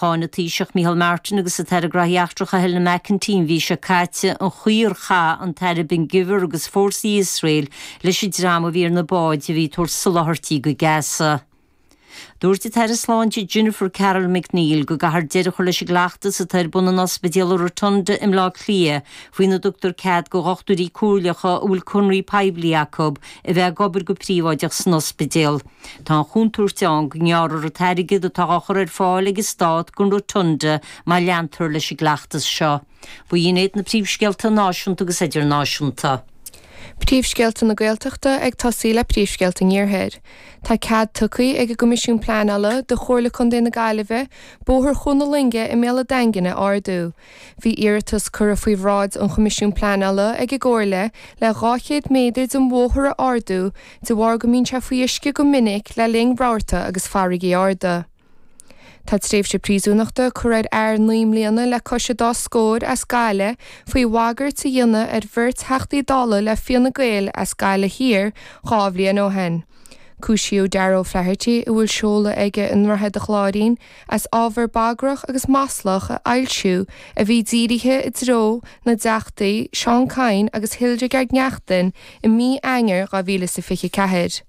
Cháin an Taoiseach Micheál Martin agus an tAire Gnóthaí Eachtracha Helena McEntee an mhí seo caite an chaoi ar chaith an tAire Ben Gvir agus fórsaí Iosrael leis an dream a bhí ar na báid a bhí ag tabhairt soláthairtí go Gaza. Dúirt an tAire Sláinte Jennifer Carroll MacNeill go gcaithfear deireadh a chur leis an gcleachtas atá ar bun in Ospidéal an Rotunda i mBleá Cliath faoina dtugtar cead do dhochtúirí comhairleacha a bhfuil conraí poiblí acu a bheith ag obair go príobháideach san ospidéal. Tá an chontúirt ann go ngearrfar an t-airgead atá á chur ar fáil ag an stát don Rotunda má leantar leis an gcleachtas seo. Ba shin iad na príomhscéalta náisiúnta agus idirnáisiúnta. Príomhscéalta na Gaeltachta ag tosaí le príomhscéalta an Iarthair. Tá cead tugtha ag an gCoimisiún Pleanála do Chomhairle Contae na Gaillimhe Bóthar Chuan na Loinge i mBéal a' Daingin a ardú, Bhí iarratas curtha faoi bhráid an Choimisiún Pleanála ag an gComhairle le 200 méadar den bhóthar a ardú de bharr go mbíonn sé faoi uisce go minic le linn rabharta agus farraigí arda. Tá tréimhse príosúnachta gearrtha ar fhear naoi mbliana le cois dá scór as Gaillimh faoi bhagairt a dhéanamh ar bheirt Theachtaí Dála le Fine Gael as Gaillimh Thiar dhá bhliain ó shin. Cúisíodh Darragh O'Flaherty, a bhfuil seoladh aige i nDroichead an Chláirín, as ábhar bagrach agus maslach a fhoilsiú a bhí dírithe i dtreo na dTeachtaí Seán Kyne agus Hildegarde Naughton i mí Eanáir 2024.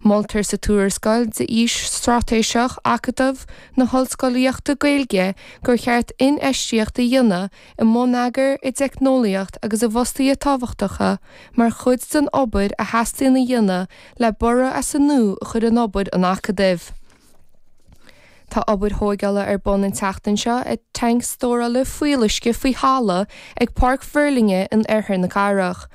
Moltar sa tuarascáil d'fhís straitéiseach Acadamh na hOllscolaíochta Gaeilge gur cheart infheistíocht a dhéanamh i mbonneagar, i dteicneolaíocht agus i bhfostaithe tábhachtacha mar chuid den obair a theastaíonn a dhéanamh le borradh as an nua a chur in obair an Acadaimh. Tá obair thóigeála ar bun an tseachtain seo ag tanc stórála fuíolluisce faoi thalamh ag Páirc Mhuirlinne in oirthear na cathrach.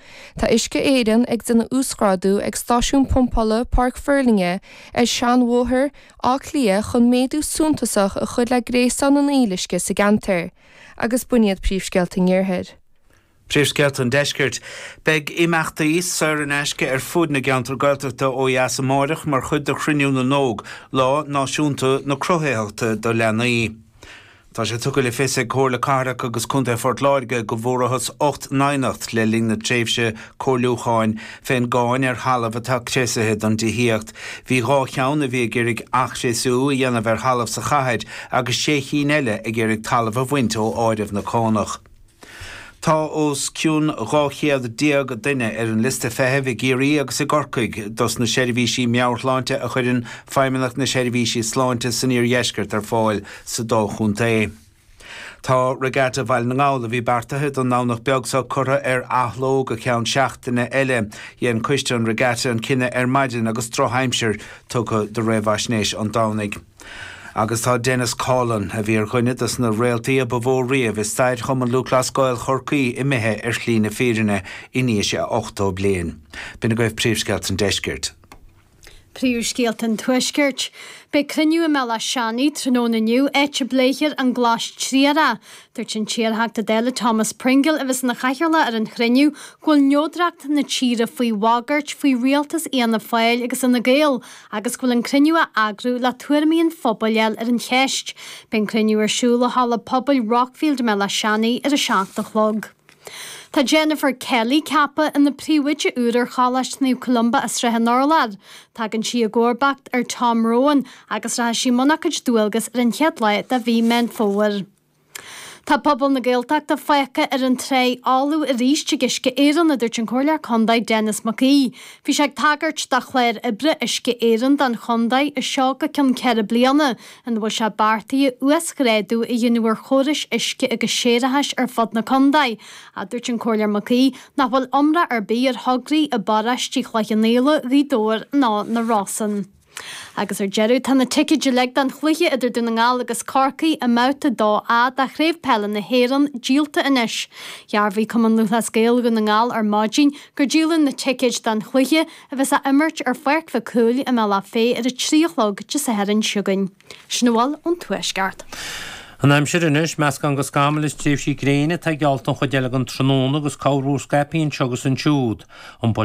Tá Uisce Éireann ag déanamh uasghrádú ag stáisiún pumpála Pháirc Mhuirlinne ar Sheanbhóthar Bhaile Átha Cliath chun méadú suntasach a chur le gréasán an fhuíolluisce sa gceantar. Agus b'in iad príomhscéalta an iarthair. Príomhscéalta an Deiscirt. Beidh imeachtaí saor in aisce ar fud na gceantar Gaeltachta ó dheas amárach mar chuid de Chruinniú na nÓg, Lá Náisiúnta na Cruthaitheachta do Leanaí. Tá sé tugtha le fios ag Comhairle Cathrach agus Contae Phort Láirge go bhfuarathas ocht n-aighneacht le linn na tréimhse comhairliúcháin fén gcáin ar thalamh atá criosaithe don dtithíocht. Bhí dhá cheann a bhí ag iarraidh athchriosú a dhéanamh ar thalamh sa chathair agus sé chinn eile ag iarraidh talamh a bhaint ó áireamh na cánach. Tá os cionn dhá chéad déag duine ar an liosta feithimh i gCiarraí agus i gCorcaigh dos na seirbhísí meabhairshláinte a chuireann Feidhmeannacht na Seirbhísí Sláinte san Iardheisceart ar fáil sa dá chontae. Tá Regatta Bhaile na nGall, a bhí beartaithe don nDomhnach beag seo, curtha ar athló go ceann seachtaine eile. Dhein Coiste an Regatta an cinneadh ar maidin agus drochaimsir tugtha do réamhaisnéis an Domhnaigh. Agus tá Denis Coughlan, a bhí ar dhuine de sna réaltaí a ba mhó riamh i stair Chumann Lúthchleas Gael Chorcaí, imithe ar shlí na fírinne in aois a 80 bliain. B'in agaibh Príomhscéalta an Deiscirt. Príomhscéalta an Tuaiscirt. Beidh cruinniú i mBéal Átha Seanaidh tráthnóna inniu, áit a bpléifear an Glas Triarach. Dúirt an t-iarTheachta Dála Thomas Pringle, a bheas ina chathaoirleach ar an chruinniú, go bhfuil neodracht na tíre faoi bhagairt faoi rialtas Fhianna Fáil agus Fhine Gael agus go bhfuil an cruinniú á eagrú le tuairimí an phobail a fháil ar an cheist. Beidh an cruinniú ar siúl i halla pobail Rockfield i mBéal Átha Seanaidh ar a seacht a chlog. Tá Jennifer Kelly ceaptha ina príomhoide úr ar Choláiste Naomh Columba i Srath an Urláir. Tagann sí i gcomharbacht ar Tom Rowan agus rachaidh sí i mbun a cuid dualgas ar an chéad lá de mhí Meán Fómhair. Tá pobal na Gaeltachta fágtha ar an trá fholamh arís ag Uisce Éireann, a dúirt an Comhairleoir Contae Denis Mac Aoidh. Bhí sé ag tagairt do chlár oibre Uisce Éireann don chontae seo go ceann ceithre bliana ina bhfuil sé beartaithe uasghrádú a dhéanamh ar chórais uisce agus séarachais ar fud na contae, ach dúirt an Comhairleoir Mac Aoidh nach bhfuil iomrá ar bith ar thograí i bparáistí Chloich Cheann Fhaola, Ghaoth Dobhair ná na Rosann. Agus ar deireadh, tá na ticéid uilig don chluiche idir Dún na nGall agus Corcaigh i mBabhta 2A de Chraobh Peile na hÉireann díolta anois. Dhearbhaigh Cumann Lúthchleas Gael Dhún na nGall ar maidin gur díoladh na ticéid don chluiche, a bheas á imirt ar Pháirc Mhic Cumhaill i mBealach Féich ar a trí a chlog Dé Sathairn seo chugainn. Sin a bhfuil ón Tuaisceart. An aimsir anois, meascán de scamaill is tréimhsí gréine atá geallta an chuid eile den tráthnóna agus corrmhúr scaipthe anseo agus ansiúd. Iompóidh sé